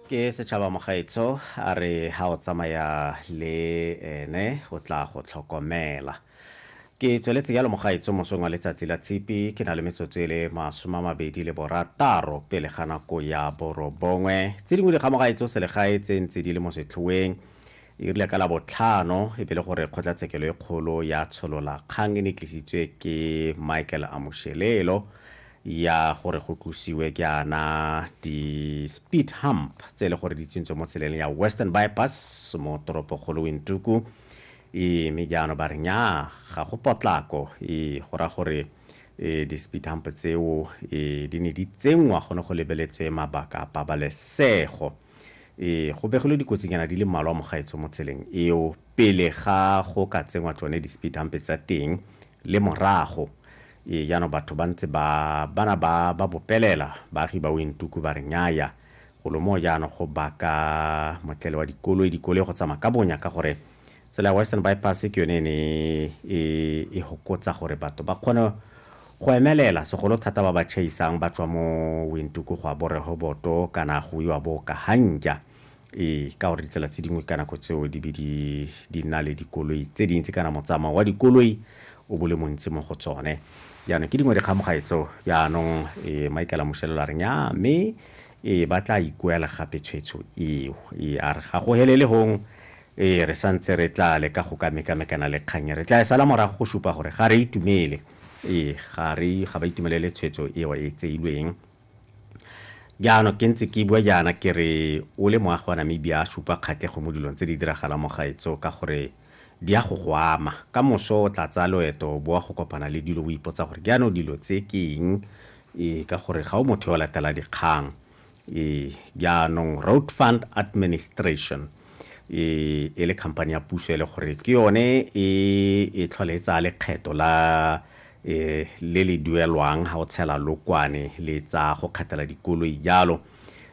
ke setšhaba mogaetsho a re ha o tsamaya le ene o tla go tlhokomela ke tsweletse jalo mogaetsho mosong wa letsatsi la tshipi ke na le metsotso e le masome a mabedi le borataro pele ga nako ya borobongwe tse dingwe dikga mogaetsho selegae tse ntse di le mo setlhoeng e rile ka la botlhano e be le gore kgotlatshekelo e kgolo ya tsholola kgang e ne tlisitswe ke michael amošelelo ya gore go tlosiwe ke ana di-speed hump tse e le gore di tsentswe mo tseleng ya western bypass mo toropokgolo wintuku e mme jaanong ba re nya ga go potlako e go ra gore e di-speed hump tseo e di ne di tsenngwa gone go lebeletswe mabaka a pabalesego e go begilwe dikotsinyana di le mmalwa mogaetsho mo tseleng eo pele ga go ka tsenngwa tsone di-speed hump tsa teng le morago ee jaanong batho ba ntse ba bana ba ba bopelela baagi ba wentuku ba re nyaya golo moo jaanong go baka motlele wa dikoloi dikoloi go tsamaya ka bonya ka gore tsela ya western bypass ke yone e ne e, e hokotsa gore batho ba kgone go emelela segolo thata ba ba chaisang ba tswa mo wentuku go a borehoboto kana go iwa bo kahanja Ee, ka gore ditsela tse dingwe ka nako tseo di be di nna le dikoloi tse dintsi kana motsamao wa dikoloi o bole montsi mo go tsone jaanong ke dingwe dikgamogae tseo jaanong e maikela mošelelo a reng ya mme e ba tla ikuela gape tshwetso eo e a re ga go helele gong e re sa ntse re tla leka go ka mekamekana le kgannye re tla e sala morago go supa gore ga re itumele e ga re ga ba itumelele tshwetso eo e tseilweng jaanong ke ntse ke bua jaana ke re o le moagi wa namibia a supa kgatlhego mo dilong tse di diragalang mo gaetso ka gore di ya go go ama ka moso o tla tsaya loeto o boa go kopana le dilo o ipotsa gore jaanong dilo tse ke eng e ka gore ga o motho yo latela dikgang e jaanong road fund administration e e le company ya puso e le gore ke yone e e tlhole e tsaya lekgetho la e le le duelwang ga o tshela lokwane le tsa go kgathela dikoloi jalo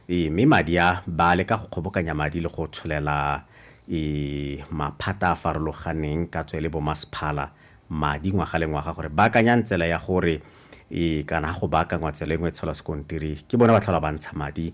e mme madi a ba le ka go kgobokanya madi le go tsholela e maphata a farologaneng ka tswe le bo masphala madi ngwaga le ngwaga gore ba akanyang tsela ya gore e kana go baakangwa tsela engwe tshola sekontiri ke bone ba tlhola ba ntsha madi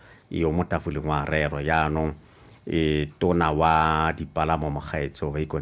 eo mo tafoleng wa rero jaanong e tona wa dipalamo mogaetsho ba ikone